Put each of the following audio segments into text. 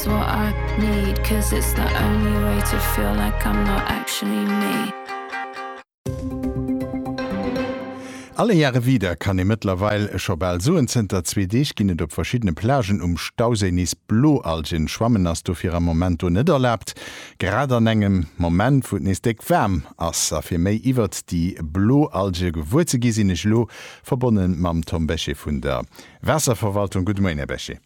what I need cause it's the only way to feel like I'm not actually me. Alle Jahre wieder kann ee mëttlerweil scho bal soen. Zënter zwee Deeg ginn et op verschiddene Plagen um Stauséi nees Bloalgen. Schwammen ass dofir am Moment do net erlaabt, grad an engem Moment, wou et nees déck waarm ass. A fir méi iwwert déi Bloalge gewuer ze gi sinn ech elo verbonne mam Tom Bechet vun der Waasserverwaltung. Gudde Moien, Här Bechet.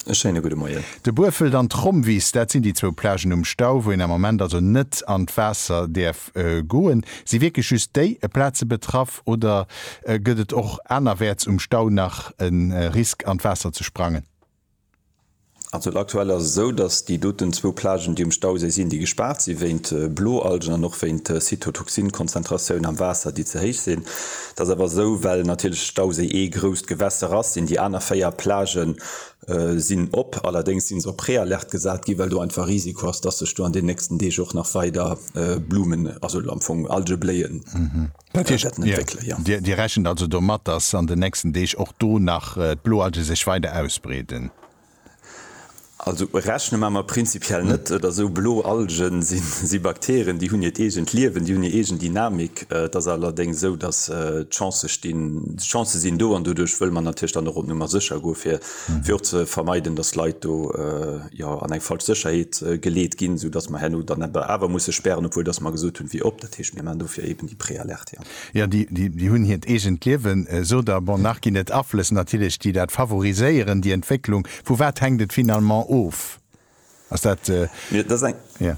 E schéine gudde Moien. De Buerfelt an d'Romwiss, dat sinn déi zwou Plagen um Stau, wou een am Moment also net an d'Waasser däerf goen. Si wierklech just déi Plaze betraff oder gëtt et och anerwäerts um Stau nach e Risk an d'Waasser ze sprangen? Also aktuell ass et esou, datt déi doten zwou Plagen, déi um Stauséi sinn, déi gespaart si wéint Bloalgen an och wéint Cytotoxin-Konzentratioun am Waasser, déi ze héich sinn. Dat ass awer esou, well natierlech de Stauséi ee grousst Gewässer ass, sinn déi aner véier Plagë sinn op. Allerdéngs si se op Préalerte gesat ginn, well do einfach e Risiko ass, dass sech do an den nächsten Deeg och nach weider Blumen, also am Fong Algebléien, wäerten entwéckelen. Dir rechent also domat, dass an den nächsten Deeg och do nach d'Bloalge sech weider ausbreeden? Also rechne mar mer prinzipiell net. Et ass esou, blo Algen si si Bakterien, déi hunn hiert eegent Liewen, déi hunn hir eegen Dynamik. Et ass allerdéngs esou, datt d'Chancë stinn, d'Chancë sinn do an doduerch wëlle mer natierlech dann och op Nummer sécher goen, fir fir och ze vermeiden, datt Leit do jo an eng falsch Sécherheet geleet ginn, soudatt mer herno dann awer musse spären, obwuel datt mer gesot hunn, wéi op. Dat heescht, mir maachen dofir eben déi Préalerte, jo. Jo, déi hunn hiert eegent Liewen, esou der. Bon, nach ginn et Aflëss natierlech, déi dat favoriséieren, déi Entwécklung. Vu wat hänkt et finalement of? Ass dat, jo.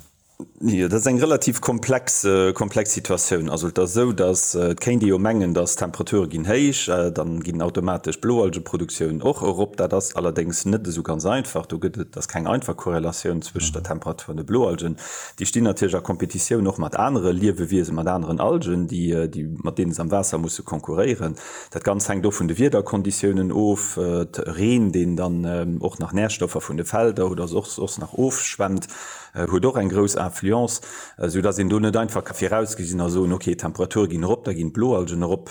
Jo, dat ass eng relativ komplex, komplex Situatioun. Also et ass esou, datt, et kéint ee jo mengen, datt d'Temperature ginn héich, dann ginn automatesch d'Bloalgeproduktioun och erop. Dat ass allerdéngs net esou ganz einfach. Do gëtt et, ass keng einfach Korrelatioun zwëscht der Temperatur an de Bloalgen. Déi stinn natierlech a Kompetitioun och mat anere Liewewiesen, mat aneren Algen, déi, mat deene se am Waasser musse konkurréieren. Dat Ganzt hänkt och vun de Wiederkonditiounen of, Reen, deen dann och nach Närstoffer vun de Felder oder soss soss nach ofschwemmt, huet och eng grouss Influence, esou dass een do net einfach ka virausgesinn a soen, okay, d'Temperature ginn erop, da ginn d'Bloalgen erop.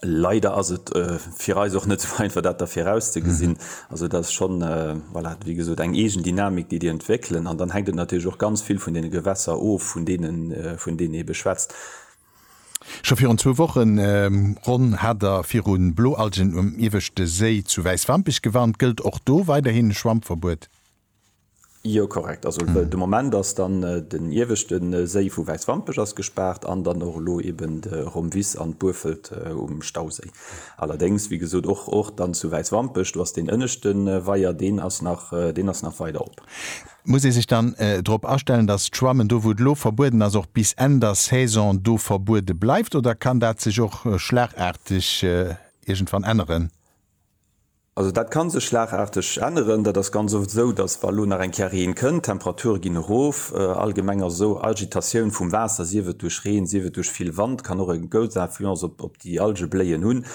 Leider ass et fir eis och net sou einfach dat da virauszegesinn. Also dat ass schonn, voilà, wéi gesot, eng eegen Dynamik, déi déi entwéckelen. An dann hänkt et natierlech och ganz vill vun deene Gewässer of, vun deenen, vun deenen ee beschwätzt. Scho virun zwou Wochen ronn hat der virun Bloalgen um ieweschte Séi zu Wäiswampech gewarnt. Gëllt och do weiderhin e Schwammverbuet? Jo korrekt, also de Moment ass dann den ieweschte Séi vu Wäiswampech ass gespaart an dann och elo eben de Romvis an d'Buerfelt um Stauséi. Allerdéngs wéi gesot och och dann zu Wäiswampech, do ass deen ënneschte Weier, deen ass nach deen ass nach weider op. Muss ee sech dann drop astellen, datt d'Schwammen do wou et elo verbueden ass och bis Enn der Saison do verbuede bleift oder kann dat sech och schlagaarteg iergendwann änneren? Also dat kann sech schlagarteg änneren. Dat ass ganz oft esou, datt wa elo nach eng Kéier Reen kënnt, d'Temperature ginn erof, allgemeng ass esou Agitatioun vum Waasser, sief et duerch Reen, sief et duerch vill Wand, kann och e grouss Influence op déi Algebléien hunn,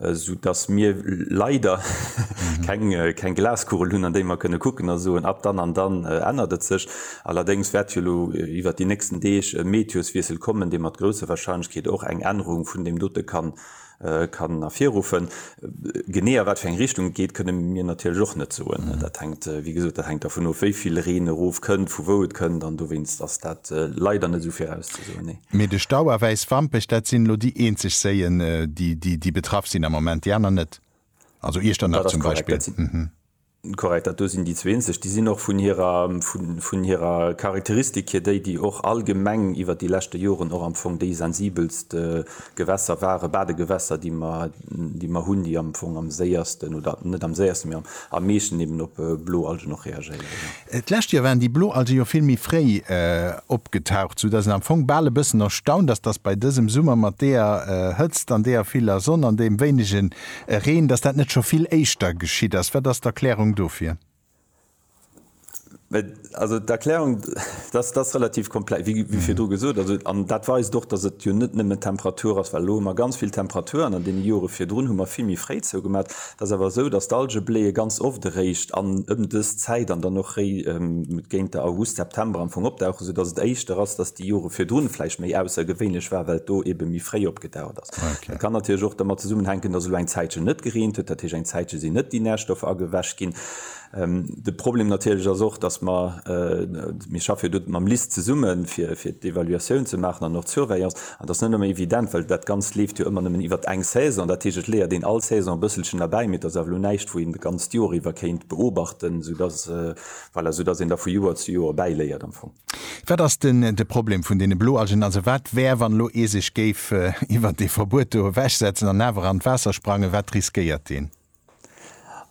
esou datt mir leider keng Glaskugel hunn an déi mer kënne kucken a soen, ab dann an dann ännert et sech. Allerdéngs wäert jo elo iwwert déi nächsten Deeg e Meteoswiessel kommen, dee mat grousser Wahrscheinlechkeet och eng Ännerung vun deem dote kann kann ervirruffen. Genee a wat fir eng Richtung et geet, kënne mir natierlech och net soen. Dat hänkt, wéi gesot, dat hänkt dervun of, wéi vill Reen erof kënnt, vu wou et kënnt, an dowéinst ass dat leider net esou virauszesoen, nee. Mee de Stau a Wäiswampech, dat sinn elo déi eenzeg Séien, déi betraff sinn am Moment, déi aner net? Also Iechternach zum Beispill? Korrekt, dat do sinn déi zwee eenzeg. Déi sinn och vun hirer, vun hirer Charakteristik hier déi, déi och allgemeng iwwert déi leschte Joren och am Fong déi sensibelst Gewässer waren, Badegewässer, déi mer, déi mer hunn, déi am Fong am séiersten oder net am séiersten, mä am meeschten eben op Bloalgen och reagéieren. D'lescht Joer waren déi Blo also jo vill méi fréi opgetaucht, sou dass een am Fong bal e bëssen erstaunt ass, dass bei dësem Summer mat deeër Hëtzt an deeër viller Sonn an deem wéinege Reen, dass dat net scho vill éischter geschitt ass. Wat ass d'Erklärung dofir? Also d'Erklärung ass relativ komplex, wéi virdru gesot. Also an dat weist och, dass et jo net nëmmen d'Temperatur ass, well elo hu mer ganz vill Temperatur an an deene Jore virdrun hu mer vill méi fréi zougemat. Et ass awer esou, datt d'Alge bléie ganz oft eréischt an ëm dës Zäit an dann och réi géint der August, September am Fong opdauchen, esou datt et éischter ass, datt déi Jore virdrun vläicht méi aussergewéinlech war, well et do ebe méi fréi opgedaucht ass. Et kann natierlech och dermat zesummenhänken, datt elo eng Zäitchen net gereent huet, dat heescht eng Zäitche sinn net déi Närstoffer agewäsch ginn. De Problem natierlech ass och, dass mer, mir schaffe jo do mam LIST zesummen, fir d'Evaluatioun ze maachen an och d'Surveillance, an dat ass net nëmme evident, well dat Ganzt leeft jo ëmmer nëmmen iwwert eng Saison. Dat heescht, et leeërt een all Saison e bësselchen erbäi, mee et ass awer elo näischt, wou een d'ganzt Jor iwwer kéint beobachten, esoudass, voilà, esoudass een da vu Joer zu Joer bäiléiert am Fong. Wat ass den de Problem vun deene Bloalgen? Also wat wär, wann elo ee sech géif iwwert dee Verbuet do ewechsetzen an awer an d'Waasser sprangen, wat riskéiert een?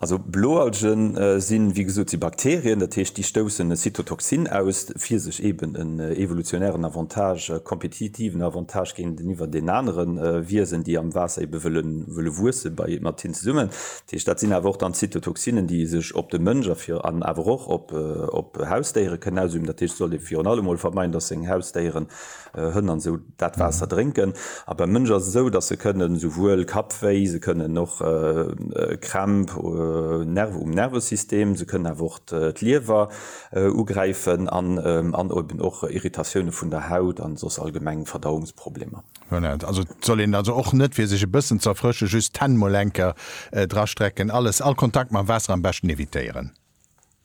Also Bloalgen sinn, wéi gesot, si Bakterien, dat heescht, déi stoussen e Cytotoxin aus, fir sech eeben en evolutionären Avantage, e kompetitiven Avantage géinteniwwer den anere Wiesen, déi am Waasser eebe wëlle wuesse mat hinnen zesummen. Dat heescht, dat sinn awer och dann Cytotoxinen, déi ee sech op de Mënsch a fir an awer och op Hausdéiere kënnen ausüben. Dat heescht, et sollt ee virun allem emol vermeiden, dass seng Hausdéieren, Hënn an esou, Dat Waasser drénken. A beim Mënsch ass et esou, dass se kënnen esouwuel Kappwéi, se kënnen och Krämp, Nerv um Nervesystem, se kënnen awer och d'Liewer ugräifen an an eben och Irritatioune vun der Haut an soss allgemeng Verdauungsproblemer. Voilà, also et soll een also och net fir sech e bëssen ze erfrëschen, just d'Hänn mol enker drastrecken. Alles, all Kontakt mam Waasser am beschten evitéieren.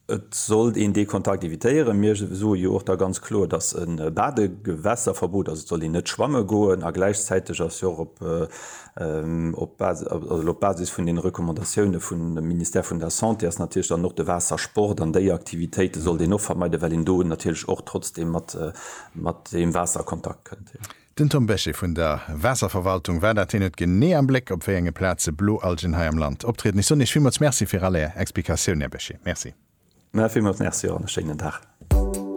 Et sollt een dee Kontakt evitéieren. Mir soe jo och da ganz kloer, dass e Badegewässerverbot, also et soll een net schwamme goen, a gläichzäiteg ass jo och op Basis vun deene Recommandatioune vum Ministère vun der Santé ass natierlech dann och de Waassersport an déi Aktivitéite sollt een och vermeiden, well een do natierlech och trotzdeem mat deem Waasser a Kontakt kënnt. Den Tom Bechet vun der Waasserverwaltung war dat. Hien huet genee am Bléck, op wéi enge Plaze Bloalgen hei am Land optrieden. Ech soen Iech villmools Merci fir all Är Explikatioun, Här Bechet. Merci. Villmools Merci an e schéinen Dag.